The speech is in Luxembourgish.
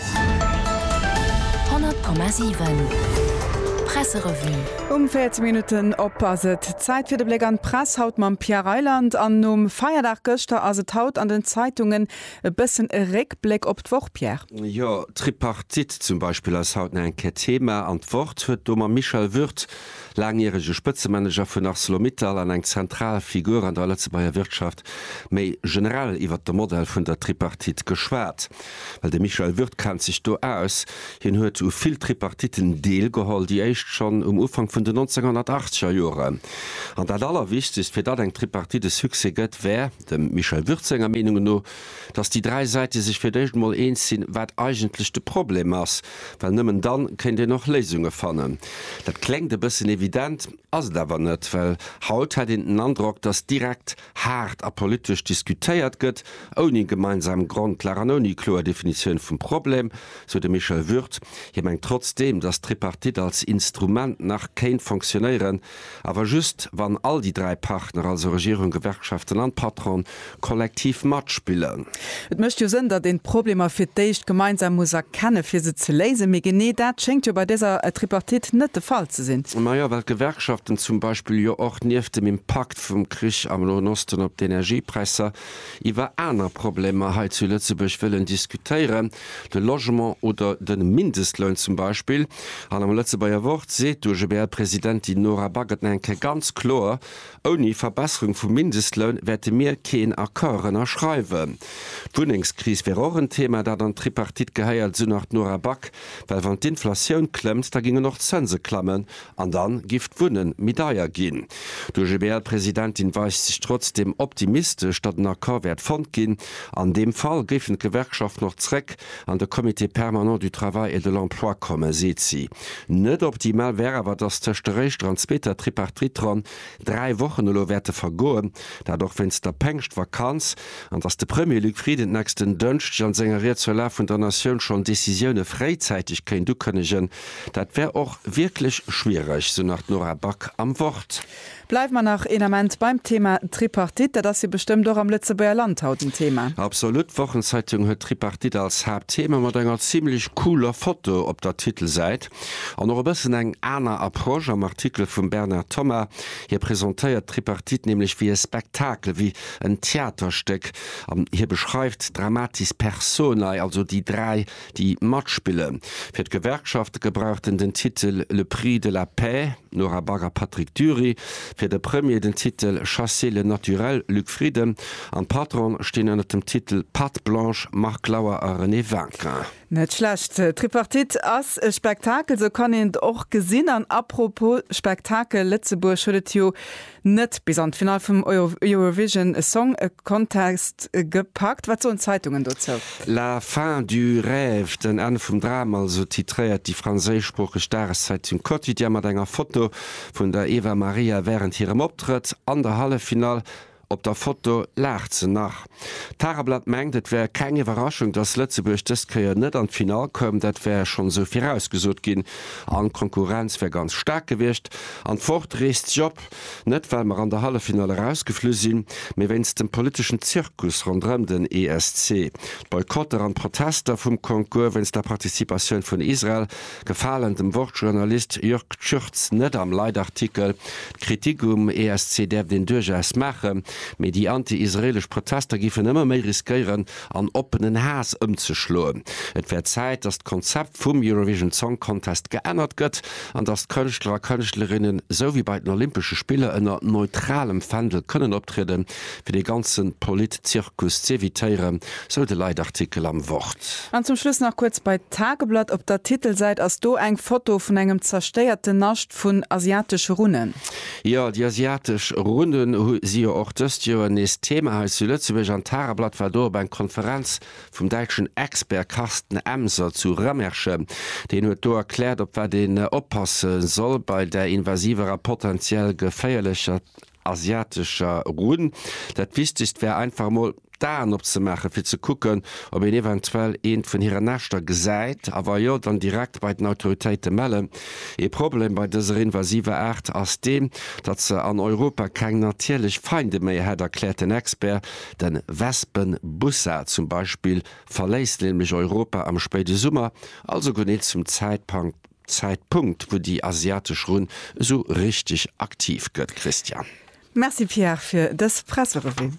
100,7 Presserevue. Um 14 Minutten op ass et Zäit fir de Bléck an d'Press, haut mam Pierre Reyland. An nom Feierdag gëschter ass et haut an den Zeitungen e bëssen e Réckbléck op d'Woch, Pierre. Jo, d'Tripartite zum Beispill ass haut nach eng Kéier Thema an d'Wort huet do mam Michel Würth, laangjärege Spëtzemanager vun Arcelor-Mittal an eng zentral Figur an der Lëtzebuerger Wirtschaft, méi generell iwwert de Modell vun der Tripartite geschwat. Well de Michel Würth kennt sech do aus, hien huet u vill Tripartiten deelgeholl, déi éischt schonn um Ufank vun den 1980 er Joren. An dat Allerwichtegst, fir datt eng Tripartite e Succès gëtt, wär, dem Michel Würth senger Meenung no, datt déi dräi Säite sech fir d'éischt emol eens sinn, wat eigentlech de Problem ass. Well nëmmen dann kéint een och Léisunge fannen. Dat kléngt e bëssen evident, ass et awer net, well haut hätt een den Androck, datt direkt, haart a politesch diskutéiert gëtt, ouni gemeinsam Grondlag an ouni kloer Definitioun vum Problem, sou de Michel Würth. Hie mengt trotzdeem, datt d'Tripartite als Instrument nach kéint fonctionéieren, awer just, wann all déi dräi Partner, also Regierung, Gewerkschaften an Patron, kollektiv matspillen. Et mécht jo Sënn, datt een d'Problemer fir d'éischt gemeinsam muss erkennen, fir se ze léisen. Mee genee dat schéngt jo bei dëser Tripartite net de Fall ze sinn. Majo, well d'Gewerkschaften zum Beispill jo och nieft dem Impakt, Impact vum Krich am Noen Osten op d'Energiepräisser, iwwer aner Problemer hei zu Lëtzebuerg wëllen diskutéieren, de Logement oder de Mindestloun zum Beispill. An am Lëtzebuerger Wort seet d'UGBL-Presidentin Nora Backes eng Kéier ganz kloer, Ouni Verbesserung vum Mindestloun wäerte mir keen Accord ënnerschreiwen. D'Wunnengskris wär och en Thema, dat an d'Tripartite gehéiert, esou nach d'Nora Back, well wann d'Inflatioun klëmmt, da gingen och d'Zënse klammen An dann giff d'Wunnen méi deier ginn. D'OGBL-Presidentin weist sech trotzdem optimistesch, datt en Accord wäert fonnt ginn. An deem Fall géifen d'Gewerkschaften och zréck an de Comité permanent du travail et de l'emploi kommen, seet si. Net optimal wär awer, datt tëscht der éischter an zweeter Tripartite-Ronn dräi Wochen elo wäerte vergoen, dat och wéinst der Pengschtvakanz, an datt de Premier Luc Frieden nächsten Dënschdeg an senger Ried zur Lag vun der Natioun schonn Decisioune fréizäiteg kéint ukënnegen, Dat wär och wierklech schwiereg, sou nach d'Nora Back am Wort. Bleiwe mer nach een Ament beim Thema Tripartite. Dat ass jo bestëmmt och am Lëtzebuerger Land haut en Thema. Absolut. D'Wochenzeitung huet d'Tripartite als Haaptthema mat enger zimlech cooler Foto op der Titelsäit. An och e bëssen eng aner Approche am Artikel vum Bernard Thomas. Hie presentéiert d'Tripartite nämlech wéi e Spektakel, wéi en Theaterstéck. An hie beschreift d'dramatis personae, also déi dräi Déi matspille fir d'Gewerkschafte gebrauchten den Titel Le prix de la paix, Nora Back a Patrick Dury, fir de Premier den Titel Chasser le naturel, Luc Frieden, an d'Patron'en stinn ënner dem Titel Patte blanche, Marc Lauer a René Wagener. Net schlecht. D'Tripartite ass e Spektakel, sou kann een et och gesinn. An apropos Spektakel, Lëtzebuerg huet et jo Net bis an d'Finall vum Eurovision Song Contest gepackt, wat soen d'Zeitungen dozou? La fin du rêve, den Enn vum Dram, esou titréiert déi franséischsproocheg Dageszeitung Quotidien mat enger Foto vun der Eva Maria wärend hirem Optrëtt an der Halleffinall. Op der Foto laacht se nach. D'Tageblatt mengt, et wär keng Iwwerraschung, datt Lëtzebuerg dëst Kéier net an d'Finall koum. Dat wär schonn esou virausgesot ginn an d'Konkurrenz wär ganz staark gewiescht. An d'Wort reest sech op, net well mer an der Halleffinall erausgeflu sinn, mee wéinst dem politeschen Zirkus ronderëm den ESC. D'Boycotter an d'Protester vum Concours wéinst der Participatioun vun Israel Gefalen dem Wort-Journalist Jörg Schürtz net am Leitartikel. D'Kritik um ESC däerft een duerchaus maachen, mee déi anti-israelesch Protester giffen ëmmer méi riskéieren, an oppenen Haass ëmzeschloen. Et wär Zäit, datt d'Konzept vum Eurovision Song Contest geännert gëtt, an datt d'Kënschtler a Kënschtlerinnen, esou wéi bei den Olympesche Spiller, ënner neutralem Fändel kënnen optrieden, fir dee ganze Politzirkus z'evitéieren, sou de Leitartikel am Wort. An zum Schluss nach kuerz bei d'Tageblatt. Op der Titelsäit ass do eng Foto vun engem zerstéierten Nascht vun asiatesche Runnen. Jo, déi asiatesch Runnen si jo och dëst Joer nees Thema hei zu Lëtzebuerg. An d'Tageblatt war do op eng Konferenz vum däitschen Expert Carsten Emser zu Remerschen. Deen huet do erkläert, op wat een oppasse soll bei där invasiver a potentiell geféierlecher asiatescher Runn. Dat wichtegst wär einfach emol d'Aen opzemaachen fir ze kucken ob een eventuell eent vun hiren Näschter gesäit a wa jo dann direkt bei den Autoritéite mellen. Ee Problem bei dëser invasiver Aart ass deen, datt se an Europa keng natierlech Feinde méi hätt, erkläert den Expert. Den Wespenbussard zum Beispill verléisst nämlech Europa am spéide Summer, also genee zum Zäitpankt, Zäitpunkt wou déi asiatesch Runn esou richteg aktiv gëtt, Christian. Merci Pierre fir dës Presserevue.